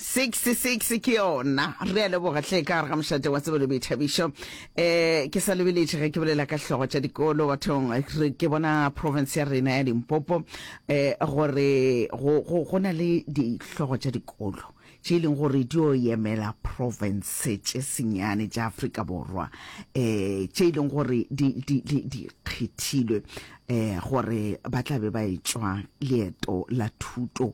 66 ke yona re a leboga hle ka gare ga mošate wa tsebelo boithabišo um eh, ke sa lebeletše ge ke bolela ka hlogo tša dikolo bathong ke bona province ya rena ya limpopo um gore go na le dihlogo tša dikolo tše e leng gore di o yemela province tše senyane tša aforika borwa um tše e leng gore di kgethilwe um gore ba tla be ba e tswa leeto la thuto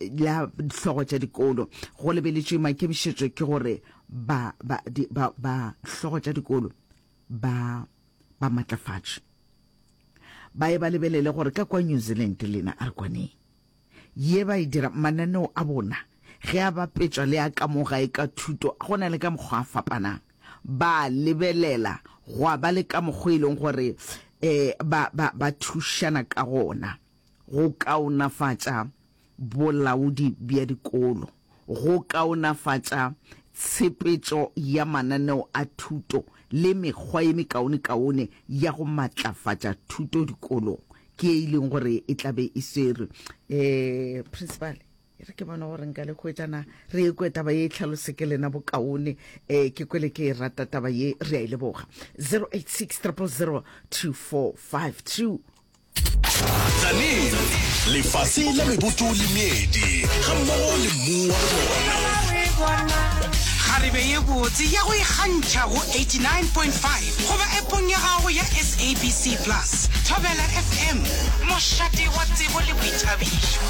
la hlogo tša dikolo go lebeletšwe maikemišetšo ke gore ba ba di, ba ba hlogo tša dikolo ba ba matlafatše ba e ba lebelele gore ka kwa New Zealand lena a re kwaneng ye ba e dira mananeo a bona ge a bapetšwa le a ka mo gae ka thuto go na le ka mokgwa a fapanang ba lebelela gwa ba le ka mokgwa e leng gore um ba, ba, ba thušana ka gona go kaonafatša bolaodi bja dikolo, go kaonafatša tshepetšo ya mananeo a thuto le mekgwa ye mekaonekaone ya go matlafatša thuto dikolong, ke ye e leng gore e tla be e swerwe. Um Principal, e re ke bone gore nka le hwetša na re ye kwe taba ye e tlhalose ke lena bokaone, um ke kwele ke e rata taba ye, re a e leboga. 086 000 2452. Tsanin, lefase la meboto le meedi, ga mmogo le mmu wa lona. Kgarebe ye botse ya go ikgantšha go 89.5 goba epong ya gago ya SABC Plus. Thobela FM, mošate wa tsebo le boithabišo.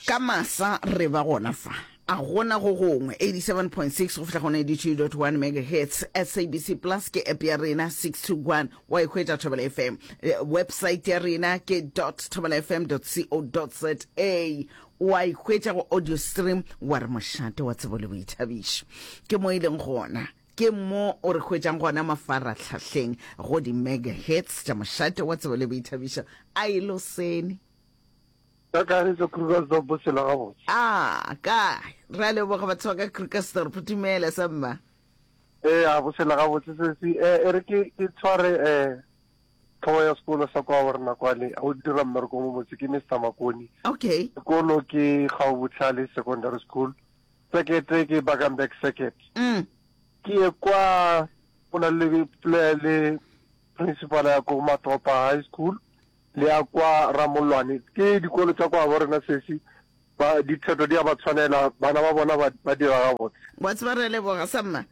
Ka masa re ba gona fa. A go na go gongwe? 87.6-92.1 megahertz SABC Plus ke app ya rena 621 wa ikhwetša e Thobela FM eh, website ya rena ke .thobelafm.co.za wa ikhwetša go audio stream wa re mošate wa tsebo le boithabišo ke mo e leng gona ke mo o re hwetšang gona mafaratlhahleng go di-megahertz tša mošate wa tsebo le boithabišo a e lo sene Ka Kagišo, Krugersdorp, Sela gabotse. A, kae? Re a leboga batho ba ka Krugersdorp. Dumela, sa mma. Ee, a bo Sela gabotse, sesi. E, e re ke, ke tshware, eh, tlhogo ya sekolo sa kwa gore na kwale, o dira mmereko mo motse, ke Mister Makoni. Okay. Sekolo ke Gaobohlale Secondary School. Sekete ke Bakenberg Circuit. Mm. Ke ye kwa, go na le, le, le principal ya ko Matopa High School. Le ya kwa Ramollwane ke dikolo tša kwa borena sesi ba dipsheto di a ba tshwanela bana ba bona ba, ba dira gabotse. Wa tseba re a leboga sa mma.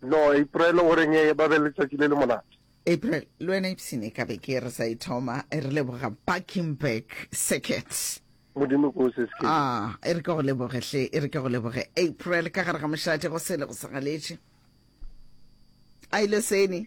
No April o reng e ba be le letšatši le le monate. April le wena ipsene ka be ke re sa e thoma e re leboga Buckingburg Circuit. Modimo ke o se se ke. Ah, e re ke go leboge hle, e re ke go leboge April ka gare ga mošate go sele go sa galetše. A ile seni.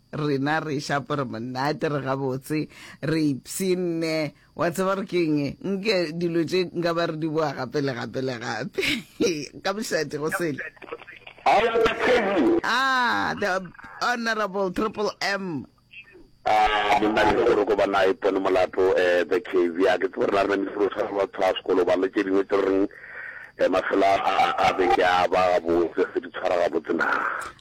Rena re eša apere monate, re gabotse, re ipshinne. Wa tseba gore ke eng? Nke dilo tše nka ba re di boa gape le gape le gape. Ka mošate go sele. Hello, the crazy. Ah, the honorable Triple M. Ah, monna le gore ko bana e pone molato eh the crazy. A ke tsebe rena rena mefero sa ba tshwa sekolo ba le tše dingwe tse reng eh mafela a a beke a ba botse re di tshwara ga botse na.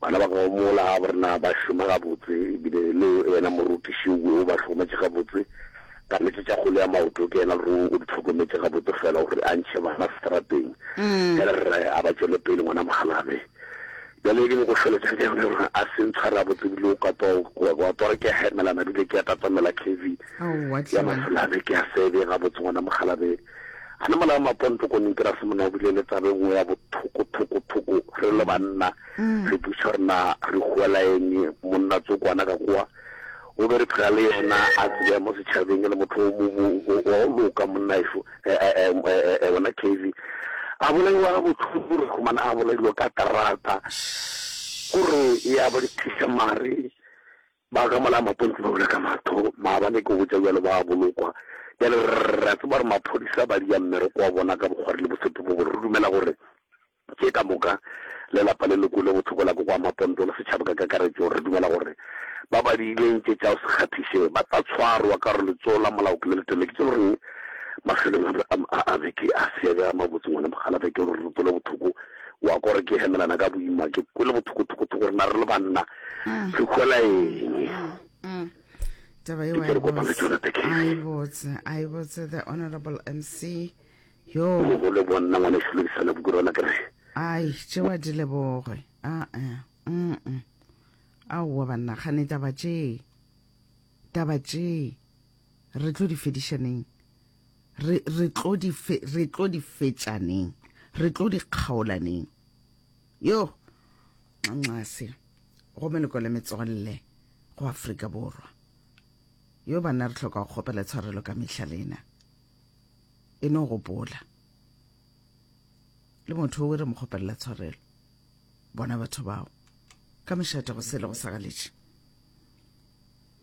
Bana ba gago mola ga ba na ba šoma gabotse e bile le wena morutiši o o ba hlokometše gabotse. Ka nnete tša kgole ya maoto ke yena ruri o di hlokometše gabotse fela gore a ntšhe bana seterateng. Bjale rre a ba tšwele pele, Ngwana Mogalabe, bjale ke nyoko fela tšatši yone gore a se ntshware gabotse ebile o ka twa wa twa re ke a hemelana ebile ke a tatamela khevi ya masolabe ke a sebe gabotse Ngwana Mogalabe. A na mola maponto ko nintera se mona bile le tsabe nngwe ya bothoko thoko thoko re le banna mm. re buša re na re huela eng monna tsokwana ka kwa o be re phela le yena a tsebea mo setšhabeng e le motho wa o loka monna eso e, e, e, wena cavy a bolaiwa botlhoko re khumana a bolailwe ka terata gore ya ba dithiša mare Ba gamola mapontshe ba bula ka matho, maabane ke go botša bjalo ba a bolokwa. Bjale re a tseba gore maphodisa ba dia mmereko wa bona ka bokgwari le boseto bo bore. Re dumela gore tše ka moka le lapa le loko le bothoko la koko wa Maponto le setšhaba ka kakaretšo re dumela gore ba ba diileng tše tša go se kgaphiše ba tla tshwarwa ka gore letsogo la molao ke le letele. Ke tše lo reng mafelong a beke a se ya bjaya mabotse ngwana mogala beke gore re tsole bothoko wa kwa gore ke hemelana ka boima ke kwele bothokothokotho gore na re le banna mm. re kwela eng mm. taba eo i botse i botse the honorable mc yo go le bonna ngwane se lokisana buku rona ke re ai tšewa di leboge a a mm aowa banna gane taba tše taba tše re tlo di fedišaneng re, re tlo di fe, re tlo di fetšaneng, re tlo di kgaolaneng. Yo, nxase, go meleko le metswalle go Afrika Borwa. Yo banna re hloka go kgopela tshwarelo ka mehla lena. E no gopola. Le motho o re mo kgopelela tshwarelo. bona batho bao ka mošate go sele go sa galetše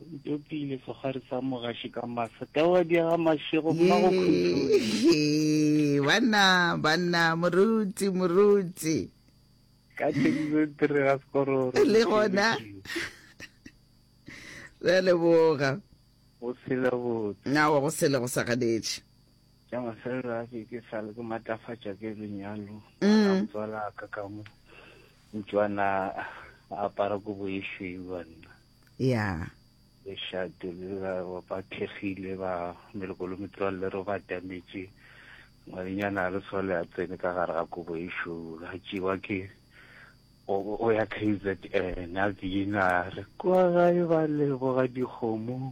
ntopile segare sa mogaši ka masa tawa diaga mašego mmago khutloe banna banna moruti moruti ka tšedizo tere ga sekororo le gona re a leboga go sela botse nawa go sele go sa ganetše ya mafelelo a ke ke sale ke matlafatša ke lenyalo a motswala a ka ka mo utswana a apara kobo e šweu wa nna ya lešate le ba ba thekgile ba melokolo metswalle ro ba tametše ngwadinyana a le sole a tsene ka gare ga kobo e šweu a tšewa ke o ya k z n a bina re kwa gae ba leboga dikgomo